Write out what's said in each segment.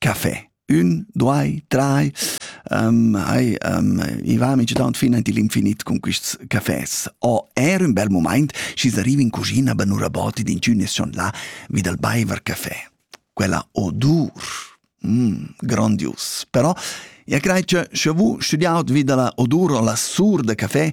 Café. Ün, due, drei. hai i va mic daunt fin aint ill'infinit cun quists cafés. O eir ün bel mumaint, schi's arriva in cuschina be nura bod ed inchün es schon là vi dal baiver café. Quella odur! grondius. Però ja crai cha scha vus studiaut vi da la odur o la sur da café,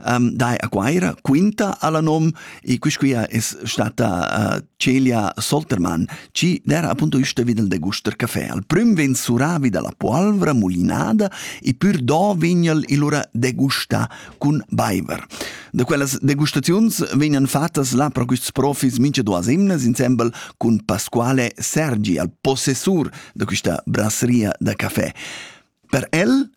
um, dai a Guaira, quinta alla nom, e quisquia es stata uh, Celia Soltermann, ci d'era appunto üsta videl de guster caffè. Al prüm ven suravi dalla polvra mulinada e pür do vignel ilura degusta cun baiver. Da quellas degustaziuns vegnan fattas là pro quists profis mincha duas imnas insembel cun Pasquale Sergi, al possessur da quista brasseria da caffè. Per el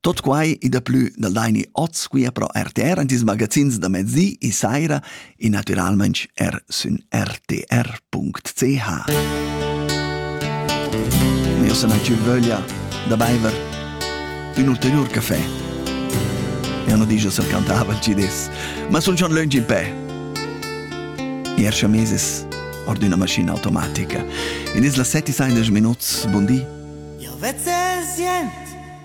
Tot quai e daplü da laini oz qui a Pro RTR en tis magazins da mezzi e saira e naturalmente er sün rtr.ch. Ma io sarà più voglia da baiver un ulterior caffè. Io non dico se cantava il CDs, ma son schon lungi in pè. Ier chameses or d'una maschina automatica. In is la 7 e 16 minuts, buondì. Io vezzo il sient